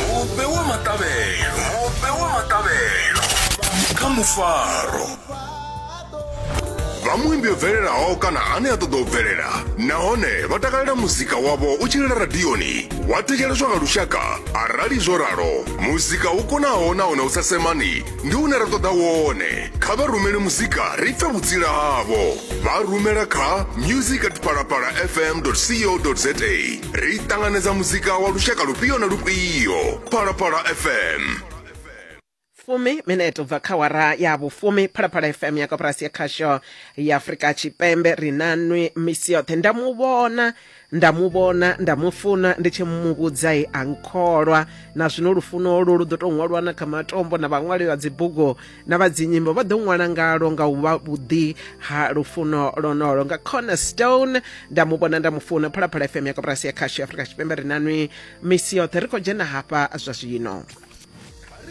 mupe wa maṱavhelo mupe wa maṱavhelo kha mufaro vha muimbi yo bvelelaho kana ane a ṱoḓa u bvelela nahone vha takalela muzika wavho u tshilela radioni wa thetsheleswa nga lushaka arali zwo ralo muzika u konaho nahone u sa semani ndi une ra ṱoḓa wone kha vha rumele muzika ri pfe vhutsila havho vha rumela kha music at palapala fm co za ri ṱanganedza muzika wa lushaka lufhio na lufhio phalaphala fm fumi minete ubva kha wara ya vhufumi phalaphala fm ya koporasi ya khasho ya afurika tshipembe ri na nwi misi yoṱhe nda mu vhona nda mu vhona nda mu funa ndi tshi mu vhudza i a nkholwa na zwino lufuno lu lu ḓo tou ṅwalwa na kha matombo na vhaṅwali vha dzibugu na vhadzinyimbo vha ḓo ṅwala ngalo nga u vha vhuḓi ha lufuno lonolo nga cornerstone nda mu vhona nda mu funa phalaphala fm ya koporasi ya khasho ya afurika tshipembe ri nanwi misi yoṱhe ri khou dzhena hafha zwa zwino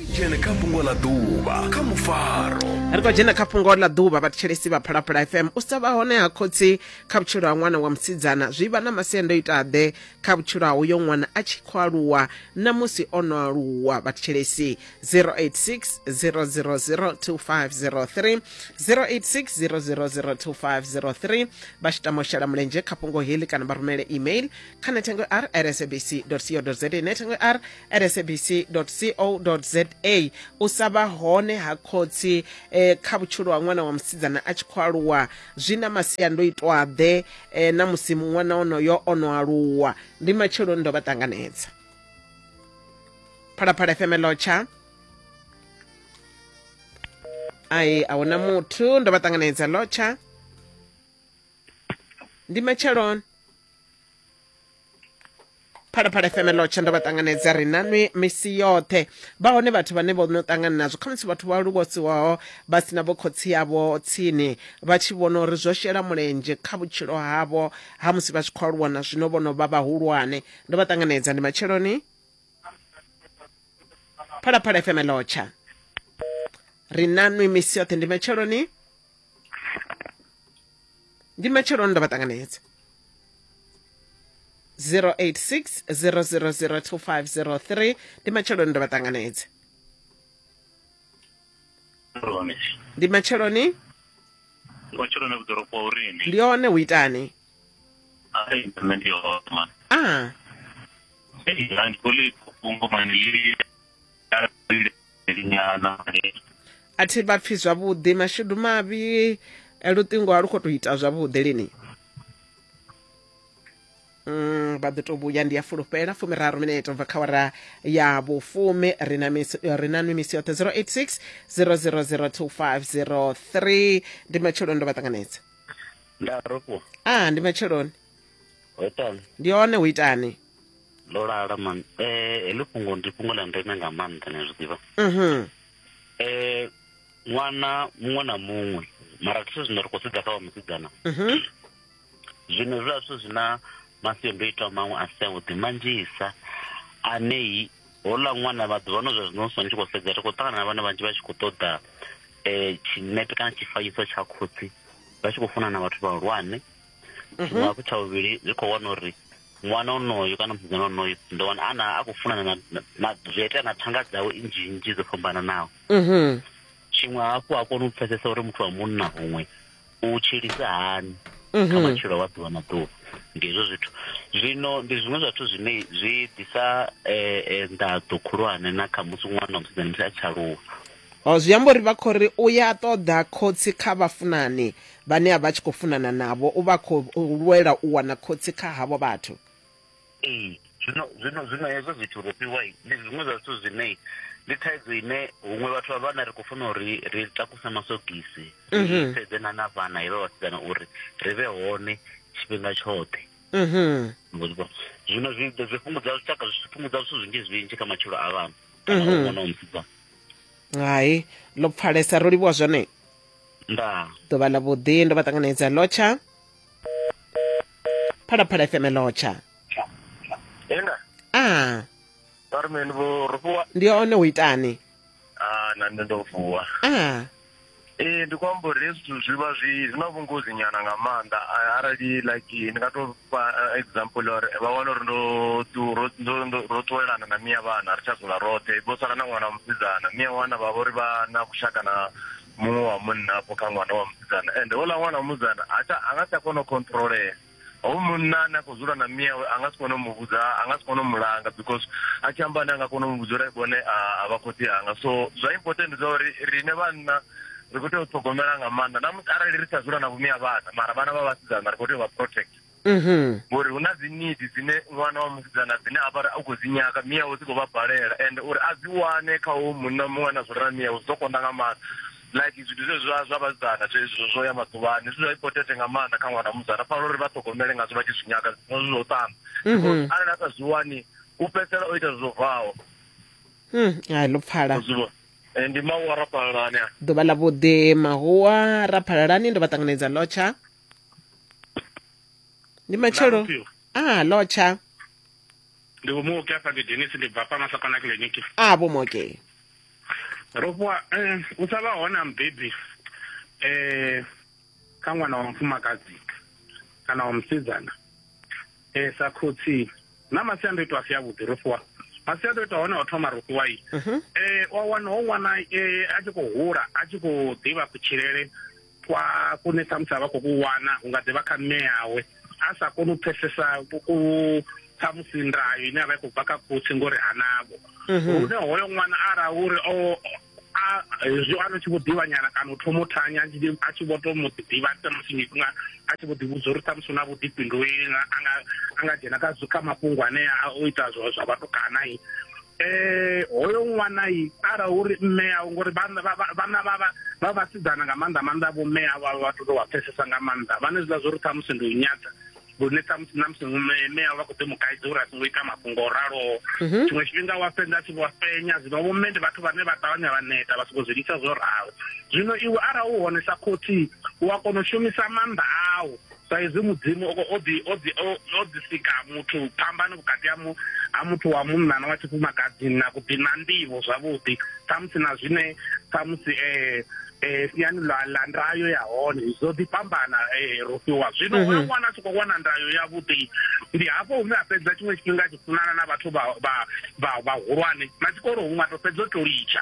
ri dzhene kha fhungo ḽa ḓuvha kha mufaro ri khou dzhena kha fhungo ḽa ḓuvha vhathetshelesi vha phalaphala fm u sa vha hone ha khotsi kha vhutshilo ha ṅwana wa musidzana zwi vha na masiandoitaḓe kha vhutshilo ha uyo ṅwana a tshi khou aluwa na musi o no aluwa vhathetshelesi 086 000 2503 086 000 2503 vha tshi tama u shela mulenzhe kha fhungo heḽi kana vha rumele email kha nethengo r at sabc co za nethengo r at sabc co za u sa vha hone ha khotsi eh, kha vhutshilo ha ṅwana wa musidzana a tshi khou aluwa zwi na masiandoitwaḓe eh, na musi ṅwana onoyo o no aluwa ndi matsheloni ndo vha ṱanganedza phalaphala fm lotsha ai a huna muthu ndo vha ṱanganedza lotsha ndi matsheloni phalaphala fm lotsha ndo vha ṱanganedza ri nanwi misi yoṱhe vha hone vhathu vhane vho no ṱangana nazwo khamusi vhathu vha luvhosiwaho vha sina vho khotsi yavho tsini vha tshi vhona uri zwo shela mulenzhe kha vhutshilo havho ha musi vha tshi khou aluwa na zwino vho no vha vhahulwane ndo vha ṱanganedza ndi matsheloni phalaphala fm lotsha ri nanwi misi yoṱhe ndi matsheloni ndi matsheloni ndo vha ṱanganedza 086 0002503 ndi matsheloni ndo vha ṱanganedza ndi matsheloni ndi matsheloni vhuḓoropo urini ndi one hu itani Hi, Mr. Osman. Ah, Hey, I'm calling Kumbo Manili. a thi vha pfi zwavhuḓi mashudu mavhi eh, luṱingo a lu khou tou ita zwavhuḓi lini Mm, vha ḓo tou vhuya ndi ya fulufhela fumiraru minete ubva kha wara ya vhufumi ri na misi- eh, ri na nwi misi yoṱhe 086 000253 ndi matshelo ndo vha ṱanganedza nda rofhiwa a ndi matsheloni ho itani ndi hone hu itani ndo lala man eh heḽi fhungo ndi fhungo ḽa ndeme nga maanḓa ni zwi ḓivha mhm eh ṅwana muṅwe na muṅwe mara zwithu zwine ri khou sedza kha wa musidzana mhm zwino zwiḽa zwithu zwi na masiandoitwa maṅwe a si avhuḓi manzhisa anei Houḽa ṅwana maḓuvha ano zwa zwino so ni tshi khou sedza ri khou ṱangana na vhana vhanzhi vha tshi khou ṱoḓa um tshinepe kana tshifanyiso tsha khotsi vha tshi khou funa na vhathu vhahulwane mhm. tshiṅwe hafhu tsha vhuvhili ri khou wana uri ṅwana onoyo kana musidzana onoyo ndo wana ana a khou funana na zwi itea na thanga dzawe nnzhi nnzhi dzo fhambananaho mhm. tshiṅwe hafhu a kone u pfesesa uri muthu wa munna huṅwe u tshilisa hani kha mhm. matshilo wa ḓuvha na ḓuvha ndi hezwo zwithu zwino ndi zwiṅwe zwithu zwine zwi ḓisa eh, eh, nḓaḓo khulwane na kha musi ṅwana musidzana musi a tshi aluwa o zwi amba uri vha khou ri u ya ṱoḓa khotsi kha vhafunani vhane a vha tshi khou funana navho u vha khou lwela u wana khotsi kha havho vhathu ee zwino zwino zwino hezwo zwithu ro fhiwa ndi zwiṅwe zwa zwithu zwine ndi thaidzo ine huṅwe vhathu vha vhana ri khou funa uri ri takuse masogisi mhm. sedze na na vhana hevha vhasidzana uri ri vhe hone tshifhinga tshoṱhe mhm. zwino zwi fhungudza zwitshaka zwi fhungudza zwithu zwinzhi zwinzhi kha matshilo a vhana kana mhm. ṅwana wa musidzana hai ḽo pfalesa ro livhuwa zwone nda ḓuvha ḽa vhuḓi ndo vha ṱanganedza lotsha phalaphala fm lotsha Enda. ah Carmen vho rufuwa. ndi one u itani Ah na nṋe ndo vuwa. ah Eh ndi khou amba uri hezwi zwithu zwi vha zwi zwi na vhungozi nyana nga maanḓa Ah, arali like ndi nga to fha ah, example uri vha wana uri ndo tu- ro ndo- ndo- ro ṱuwelana na miya vhana ri tsha dzula roṱhe vho sala na ṅwana wa musidzana miya wana vha vha uri vha na kushaka na muṅwe wa munna afho kha ṅwana wa musidzana ende houḽa ṅwana wa musidzana ha tsha a nga si tsha kona u controlea hoyu munna ane a khou dzula na miawe a nga si kone u mu vhudza a nga si kone u mu langa because a tshi amba ane a nga kona u mu vhudza uri vhone a vha khotsi anga so zwa important ndi zwa uri riṋe vhanna ri khou tea u ṱhogomela nga maanḓa na musi arali ri sa dzula na vhumia vhana mara vhana vha vhasidzana ri khou tea u vha protect mhm. ngori hu na dzi nidi dzine ṅwana wa musidzana dzine a vhari a khou dzi nyaka miyawe dzi khou vha balela and uri a dzi wane kha u munna muṅwe na zwirela miyawe zwi ḓo konda nga maanḓa like zwithu zwe zwa zwa vhasidzana zwezwo zwo ya maḓuvhani zwithu zwa ipotete nga maanḓa kha ṅwana musidzana fanela uri vha ṱhogomele ngazwo vha tshi zwi nyaka zwi zwo ṱana mhm. arali a sa zwi wani u fhedzisela o ita zwo bvaho hmm, hai ḽo pfala Eh, ndi mahuwa ra phalalani ḓuvha ḽa vhuḓi mahuwa ra phalalani ndo vha ṱanganedza lotsha ndi matshelo Ndavhuphiwa. ah lotsha ndi vho muoki afha ndi denis ndi bva fhano sakana kiliniki ah vho moke ro fhiwa eh, u sa vha hone ha mubebi eh, kha ṅwana wa mufumakadzi kana wa musidzana eh, sa khotsi na masiandoitwa a si avhuḓi ro fhiwa masiandoitwa hone o thoma ro fhiwa i Mhm. eh, wa wana ho wana eh, a tshi khou hula a tshi khou ḓivha kutshilele kwa kune ṱhamusi a vha khou ku wana hu nga ḓi vha kha mme awe a sa koni u pfesesa ku ṱhamusi ndayo ine a vha i khou bva kha khotsi ngori hanavho mhm. hune hoyo ṅwana ara uri o hezwi ano tshi vho ḓivhanyana kana u thoma u thanya a tshi vho to mu ḓivha ṱhamusi nga a tshi vho ḓivhudza uri ṱhamusi u na vhuḓifhinduleli a nga dzhena kha kha mafhungo anea o ita zwa vhatukana eh hoyo ṅwana yi ara uri mme yawe ngori vhana vha vha vhasidzana nga maanḓa maanḓa vho mme yawe vha vhathu tou vha pfesesa nga maanḓa vhane zwiḽa zwo ri ṱhamusi ndi u nyata lune ṱhamusi na musi mme yawe vha khou ḓi mu kaidza uri a songo ita mafhungo o raloho mhm. tshiṅwe tshifhinga wa fhedza a tshi vho fenya zwino vho mme ndi vhathu vhane vha ṱavhanya vha neta vha songo zwi lisa zwo ralo zwino iwe ara u hone sa khotsi u a kona u shumisa maanḓa awu sa izwi mudzimu o ḓi o ḓi o ḓi sika muthu phambano vhukati ha mu ha muthu wa munna na wa tshifumakadzini na kuḓi na nḓivho zwavhuḓi samusi na zwine samusi eh eh siani ḽa ḽa ndayo ya hone zwo ḓi fhambana eh ro fhiwa zwino mhm. oyo ṅwana a tshi khou wana ndayo ya vhuḓi ndi hafho hune a fhedza tshiṅwe tshifhinga tshi funana na vhathu vha vha vhahulwane na tshikolo huṅwe a to fhedza o to litsha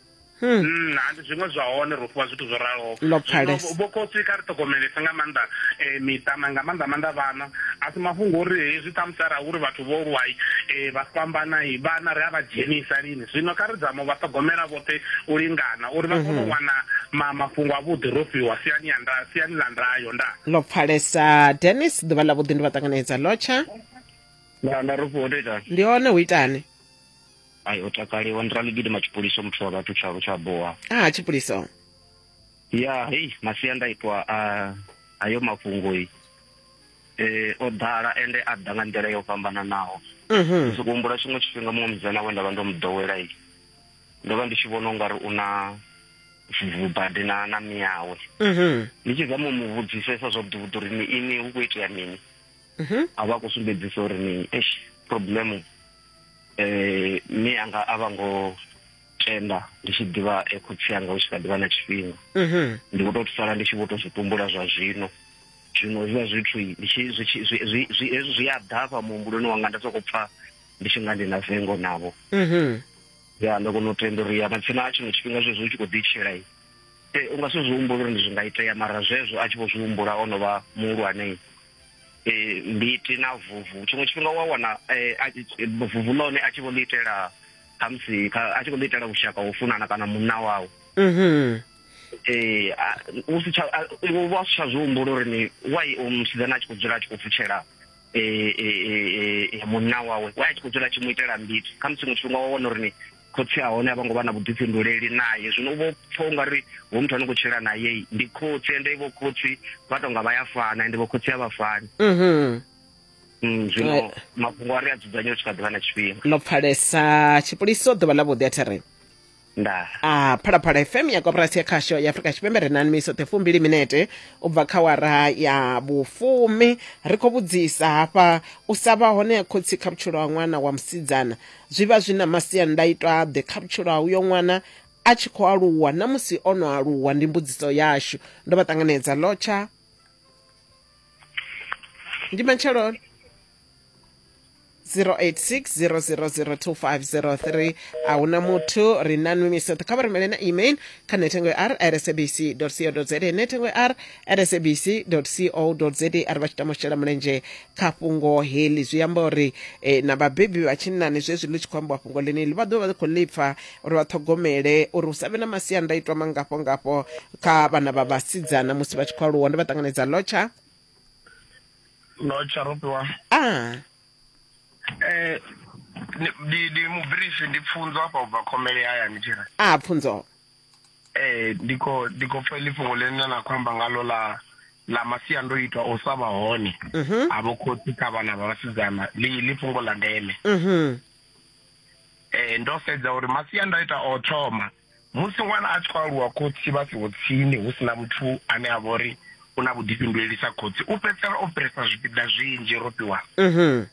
Hmm. Hmm, ndi zwiṅwe zwa hone ro fhiwa zwithu zwo raloho vho khotsi kha ri ṱhogomelese nga maanḓa um miṱa na nga maanḓa maanḓa vhana a si mafhungo uri hezwi ṱhamusi arali uri vhathu vho lwai um vha fhambanai vhana ri a vha dzhenisa lini zwino kha ri dzamo vha ṱhogomela vhoṱhe u lingana uri vha kone u mhm. wana mafhungo avhuḓi ro fhiwa siani ya nda siani ḽa ndayo nda ḽo pfalesa denis ḓuvha ḽa vhuḓi ndi vha ṱanganedza lotsha ndi hone hu itani ai o takaliwa ndi raligidi matshipuliso muthu wa vhathu tshalo tsha boha ah tshipuliso ya hei masiandaitwa a ayo mafhungo um o ḓala ende a ḓa nga nḓila yo fhambananaho mhm. soko humbula tshiṅwe tshifhinga muṅwe mudzana we nda vha ndo mu ḓowela i ndo vha ndi tshi vhona ungari u na vubadi na na miyawe mhm. ndi tshi zama u mu vhudzisesa zwa vhuḓuvhuḓi uri ni ini hu khou itea mini mhm. a vha a khou sumbedzisa uri ni problem eh mi anga a vha ngo tenda ndi tshi ḓivha e khotsi anga u tshi kha ḓivha na tshifhinga mhm. ndi vho to sala ndi tshi vho to zwi tumbula zwa zwino zwino zwa zwithu ndi tshi zwi zwi zwi zwi zwi a ḓafha muhumbuloni wanga nda soko pfa ndi tshi nga ndi na vengo navho mhm. ya ndo kono tenda uri ya matsina a tshino tshifhinga zwe zwi tshi kho ḓi tshela i eh, u nga si zwi humbula uri ndi zwi nga itea mara zwezwo a tshi vho zwi humbula ono vha muhulwane eh, mbiti na vuvu tshiṅwe tshifhinga wa wana eh, vuvu ḽone a tshi vho ḽi itela khamusi a tshi khou ḽi itela vhushaka ho funana kana munna wawe mhm. eh, u si tsha iwe vha si tsha zwi humbula uri ni wai o musidzana a tshi khou dzula a tshi khou pfutshela munna wawe wai a tshi khou dzula a tshi mu itela mbiti khamusi muṅwe tshifhinga wa wana uri ni khotsi a hone a vho ngo vha na vhuḓifhinduleli naye zwino u vho pfha ungari hu muthu ano khou tshila naye ndi khotsi ende vho khotsi vha tonga vha ya fana ende vho khotsi a vha fani mhm. mm, zwino mafhungo a ri a dzudzanye u tshi kha ḓivha na tshifhinga no pfalesa tshipoliso ḓuvha ḽa vhuḓi a thiri nda a ah, phalaphala fm ya koporasi ya khasho ya afrika tshipembe ri na nimiso ṱhe fumbili minete u bva kha wara ya vhufumi ri khou vhudzisa hafha u sa vha hone ya khotsi kha vhutshilo ha ṅwana wa musidzana Zwi vha zwi na masiandaitwa-ḓe kha vhutshilo ha uyo ṅwana a tshi khou aluwa na musi o no aluwa? Ndi mbudziso yashu. Ndo vha ṱanganedza. Lotsha, ndi matsheloni. 0860002503 a hu na muthu ri na nwimisotho kha vha rumele na email kha nethengo ya r at sabc co za nethengo ya r at sabc co za arali vha tshi tama u shela mulenzhe kha fhungo heḽi zwi amba uri eh, na vhabebi vha tshinnani zwezwi ḽi tshi khou ambiwa fhungo ḽeneḽi vha ḓovha vha khou ḽi pfa uri vha ṱhogomele uri hu sa vhe na masiandaitwa mangafho ngafho kha vhana vha vhasidzana musi vha tshi khou aluwa ndi vha ṱanganedza lotsha no tsharopiwa a eh ndi ndi mubirifi ndi pfunzo hafha ubva khomele hayani tshira a pfunzo ee ndi khou ndi khou pfa ḽi fhungo ḽine na khou amba ngalo ḽa ḽa masiandoitwa o sa vha hone mhm. a vho khotsi kha vhana vha vhasidzana ḽi fhungo ḽa ndeme mhm. eh ndo sedza uri masiandaitwa o thoma musi ṅwana a tshi khou aluwa khotsi vha siho tsini hu sina muthu ane a vha uri u na vhuḓifhinduleli sa khotsi u fhedzisela o fhirisa zwipiḓa zwinzhi ro fhiwa mhm.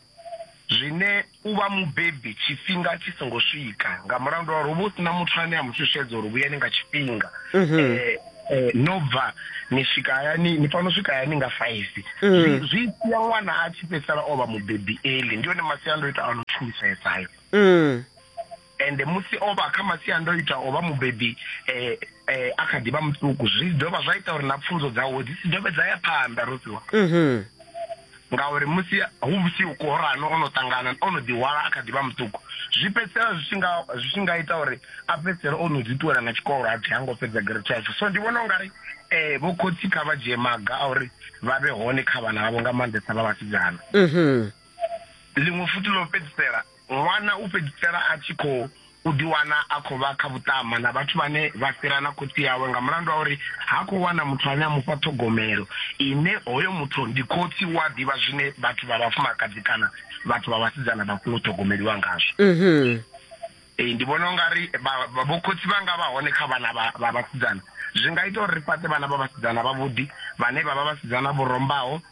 zwine u vha mubebi tshifhinga tshi songo swika nga mulandu wa uri uvha u sina muthu ane a mu shushedza uri vhuyani nga tshifhinga mhm. eh, eh, no bva ni swika hayani ni fanela u swika hayani nga faifi mhm. zwi sia ṅwana a tshi fhedzisela o vha mubebi eli ndi yone masiandoitwa a no tshulusesayo mhm. Ende musi o vha kha masiandoitwa o vha mubebi e e a kha ḓi vha muṱuku, zwi dovha zwa ita uri na pfunzo dzawe dzi si dovhe dza ya phanḓa, Rofhiwa. Mhm. Ngauri musi hu vhusiku Korano o no ṱangana, o no ḓihwala a kha ḓi vha muṱuku, zwi fhedzisela zwi tshi nga zwi tshi nga ita uri a fhedzisele o no ḓi ṱuwela na tshikolo a thi ha ngo fhedza grade 12. So ndi vhona u nga ri e vho khotsi kha vha dzhie maga a uri vha vhe hone kha vhana vhavho nga maanḓesa vha vhasidzana. Mhm. Ḽiṅwe futhi ḽo fhedzisela Ṅwana u fhedzisela a tshi khou ḓiwana a khou vha kha vhuṱama na vhathu vhane vha fhira na khotsi awe nga mulandu wa uri ha khou wana muthu ane a mu fha ṱhogomelo ine hoyo muthu ndi khotsi, u a ḓivha zwine vhathu vha vhafumakadzi kana vhathu vha vhasidzana vha funa u ṱhogomeliwa ngazwo. Ee, ndi vhona u nga ri vhokhotsi vha nga vha hone kha vhana vha vhasidzana zwi nga ita uri ri fhaṱe vhana vha vhasidzana vhavhuḓi vhane vha vha vhasidzana vho rombaho.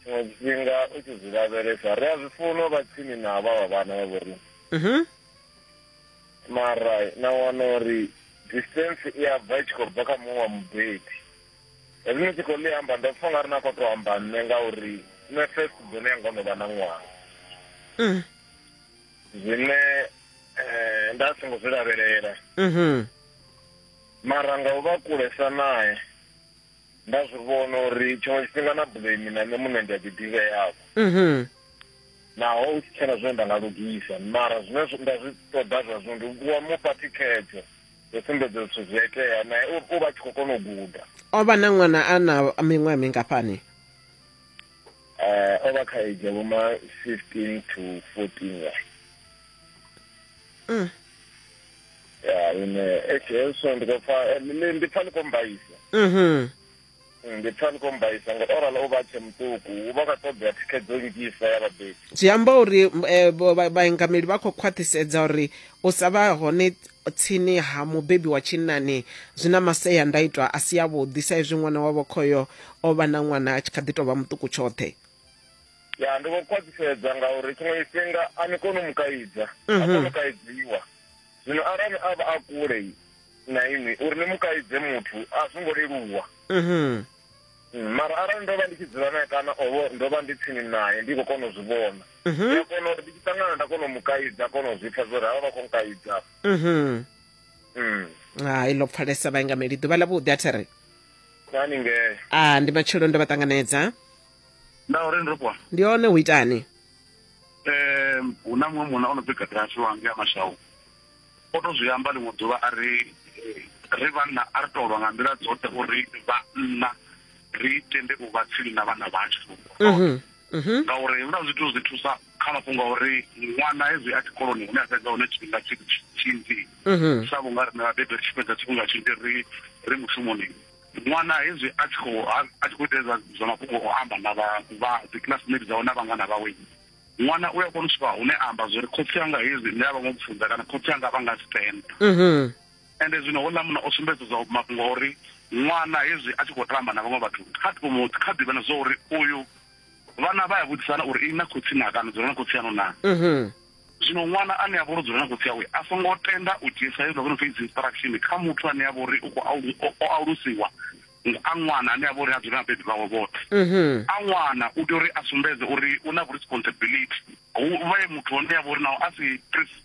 tshiṅwe tshifhinga u tshi zwi lavhelesa ri a zwi funa vha tsini na vha vha vhana vha vhori mhm. mara na wana uri distance i a bva i tshi khou bva kha muṅwe wa mubebi hezwi ni tshi khou ḽi amba ndo pfa nga ri na khou to amba nṋe ngauri nṋe first bone yanga o no vha na ṅwaha mm. zwine um nda songo zwi lavhelela mhm. mara nga u vha kulesa naye nda zwi vhona uri tshiṅwe tshifhinga na blame na nṋe muṋe ndi a ḓiḓivheavho mhm. naho u tshi tshena zwine nda nga lugisa mara zwine nda zwi ṱoḓa zwa zwino ndi wa mufha thikhedzo yo sumbedza zwithu zwi a itea naye u vha tshi khou kona u guda o vha na ṅwana a na miṅwaha mingafhani um o vha kha age ya vhoma fifteen to fourteen ya mm. ya ine e jesu ndi khou pfa eh, ni- ndi pfa ni khou mbaisa mhm Mm, ndi pfa ni khou mbaisa ngo orala u vha tshe muṱuku u vha kha ṱoḓea thikhedzo nnzhisa ya vhabebi zwi amba uri m- eh, vho- vha- vhaingameli vha khou khwaṱhisedza uri u sa vha hone tsini ha mubebi wa tshinnani zwi na maseandaitwa a si avhuḓi sa izwi ṅwana wavho khoyo o vha na ṅwana a tshi kha ḓi tou vha muṱuku tshoṱhe ya ndi vho khwaṱhisedza ngauri tshiṅwe tshifhinga a ni koni u mu kaidza a mhm. koni u kaidziwa zwino arali a vha a kule na inwi uri ni mu kaidze muthu a zwo ngo leluwa mhm. mm, mara arali ndo vha ndi tshi dzula naye kana ovo ndo vha ndi tsini naye ndi khou kona u zwi vhona mhm. ndi a kona uri ndi tshi ṱangana nda kona u mu kaidza kona u zwi pfa zwo ri havha vha khou nkaidza mm. hai ḽo pfalesa vhaingameli ḓuvha ḽa vhuḓi a thi ri haningee a ah, ndi matshelo ndo vha ṱanganedza nda uri ndo kwa ndi one hu itani eh hu na muṅwe munna o no pfi gadrasi wange a mashawu o to zwi amba ḽiṅwe ḓuvha a ri eh, ri vhanna a ri tolwa nga nḓila dzoṱhe uri vhanna ri tende u vha tsini na vhana vhashu Mhm, mhm. ngauri huna zwithu zwi thusa kha mafhungo a uri ṅwana hezwi a tshikoloni hune a fhedza hone tshifhinga tshi- tshi- tshinzhi Mhm. sa vhunga rine vhabebi ri tshi fhedza tshifhinga tshinzhi ri ri mushumoni Ṅwana hezwi a tshi khou a tshi khou ita hezwa zwa mafhungo o amba na vha vha dzi classmate dzawe na vhangana vhawe, ṅwana u a kona u swika hune a amba zwori khotsi anga hezwi nṋe a vha ngo pfunza kana khotsi anga vha nga stand. Mhm. Ende zwino houḽa munna o sumbedza zwa mafhungo a uri ṅwana hezwi a tshi khou tamba na vhaṅwe vhathu kha mu kha ḓivha na zwa uri uyu vhana vha ya vhudzisana uri ini na khotsi na kana dzula na khotsi yanu na. Mhm. Zwino ṅwana ane a vha uri u dzula na khotsi awe a songo tenda u dzhiesa hezwo zwo no pfi dzi instruction kha muthu ane a vha uri u khou alu, o, o alusiwa nga a ṅwana ane a vha uri ha dzuli na vhabebi vhawe vhoṱhe. A ṅwana u tea uri a sumbedze uri u na vhuresponsibility, hu vhe muthu hone a vha uri naho a si Christ.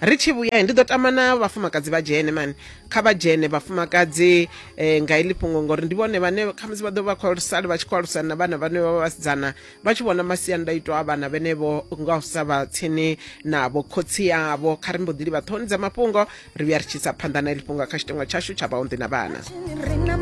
ri tshi vhuya ndi ḓo tama na vhafumakadzi vha dzhene mani kha vha dzhene vhafumakadzi um nga iḽi fhungo ngori ndi vhone vhane khamusi vha ḓo vha khou sali vha tshi khou alusana na vhana vhane vha vha vhasidzana vha tshi vhona masiandaitwa a vhana vhenevho nga u sa vha tsini navho khotsi yavho kha ri mbo ḓi livha ṱhohoni dza mafhungo ri vhuya ri tshi sa phanḓa na iḽi fhungo kha tshitengo tshashu tsha vhaunḓi na vhana